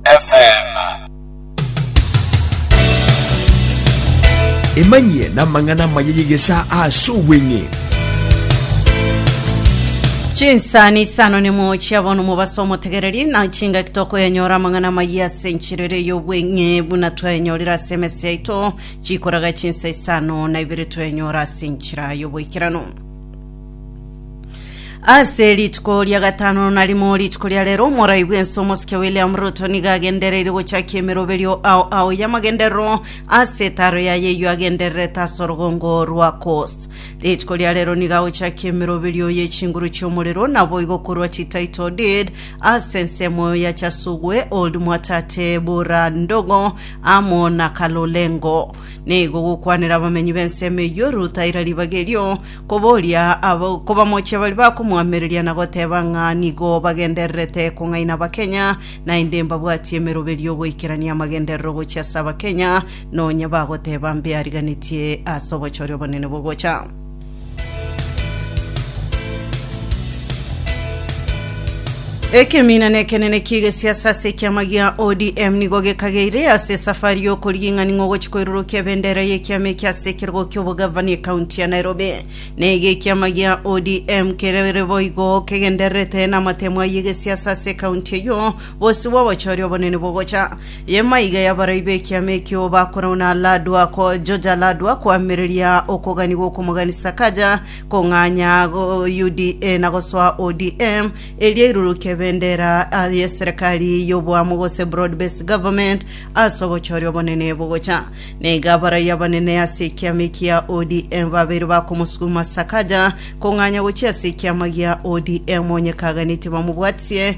FM. Emanyie namang'ana amaya y'egesaa ase obweng'e. chinsani isano nemo chia bono mobaso omotegereri na chingaki tokoyanyora amang'ana amaya ase enchirere y'obweng'e buna twayanyorire ase emesi yaito chikoraga chinsa isano na ibere toyanyora ase enchira y'oboikeranu ase rituko ria gatano narimo rituko ria rero omorai bwense omosike william ruto niga agendereire gochakia emeroberio ao ao y'amagenderero ase etaro yaye eyio agendererete ase orogongo rwa coast rituko ria rero niga agochakia emeroberio ye chinguru chi'omorero naboigo korwa chitaito did ase ensemo ya chasugwe old mwatate bura ndogo amo na kalolengo nigo gokwanera abamenyi b'ensemo eyio rutaira ribaga erio Koboria abo kobamochia baria bakomoamereria na goteba ng'a nigo bagendererete kong'aina Abakenya, naende mbabwatie emeroberio goikerania amagenderero gochia ase Abakenya, nonya bagoteba mbeariganetie ase obochore obonene bogocha. Ekeminana ekenene ki'egesiasa ase ekiama gia ODM nigo gekageire ase esafari y'okorigia ing'ani ng'ogochia koirorokia ebendera y'ekiama eke ase ekerogo ki'obogavana ekaunti ya Nairobi. Naiga ekiama gia ODM kerere boigo kegendererete namatemo ayio egesiasa ase ekaunti eyio bosio bw'obochori obonene bogocha. Yemaiga yabarai b'ekiama ekio bakorwa na Ladwa ko George Ladwa koamereria okogani gw'okomoganisa Sakaja Kong'anya UDA na gosoa ODM, erio airurukie ebendera y'eserekari y'oboamo gose broad based government ase obochori obonene bogocha. Na iga abaraiyo abanene ase ekiama eki gia ODM babeire bakomosuguma Sakaja kong'anya gochia ase ekiama gia ODM onye kaganetie bamobwatie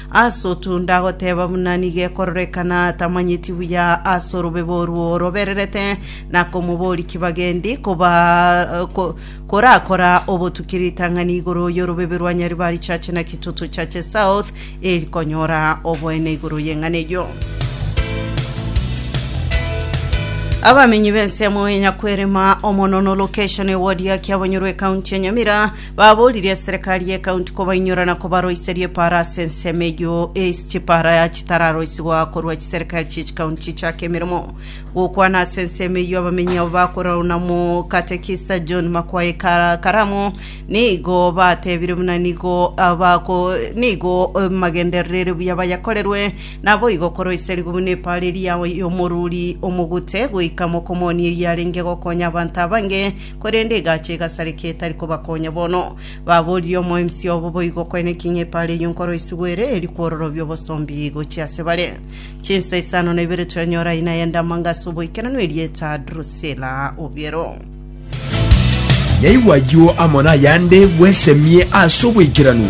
Ase otu ndagoteba buna nigo ekororekana tamanyeti buya ase orobebo orwo robererete, na komobori kibagendi koba ko- korakora obotuki ritang'ani igoro y'orobebe rwa Nyaribari Church na Kitutu Church South, eri konyora oboene igoro y'eng'ana eyio. Abamenyi b'ensemo e Nyakwerema, Omonono Location, Ewodi ya Kiabonyoro, Ekaunti ya Nyamira, Baboririe eserekari y'ekaunti kobainyora na kobaroiseria epaara ase ensemo eyio, ais chipaara chitararoisigwa korwa chiserekari chie chikaunti chichake emeremo. Gokwana ase ensemo eyio abamenyi abo bakorerwa na Omokatekista John Makwayi Kara- Karamo nigo batebire buna nigo ah, bako nigo eh, magenderere buya bayakorerwe naboigo koroiserigwe buna epaara eria y'omoruri omogute goika mokomonia eyarenge gokonya abanto abange Korende egacha egasareka etari kobakonya bono. Baboririe omoemsi obo boigo kwena eking'e epaara eyio nkoroisigwa ere eri kwororobia obosombi gochia ase bare. Chinsa isano na ibere twanyora aina ya endamanga ase oboikeranu erieta Drusila obiero. Naigwa ayio amo nayande bwesemie ase oboikeranu.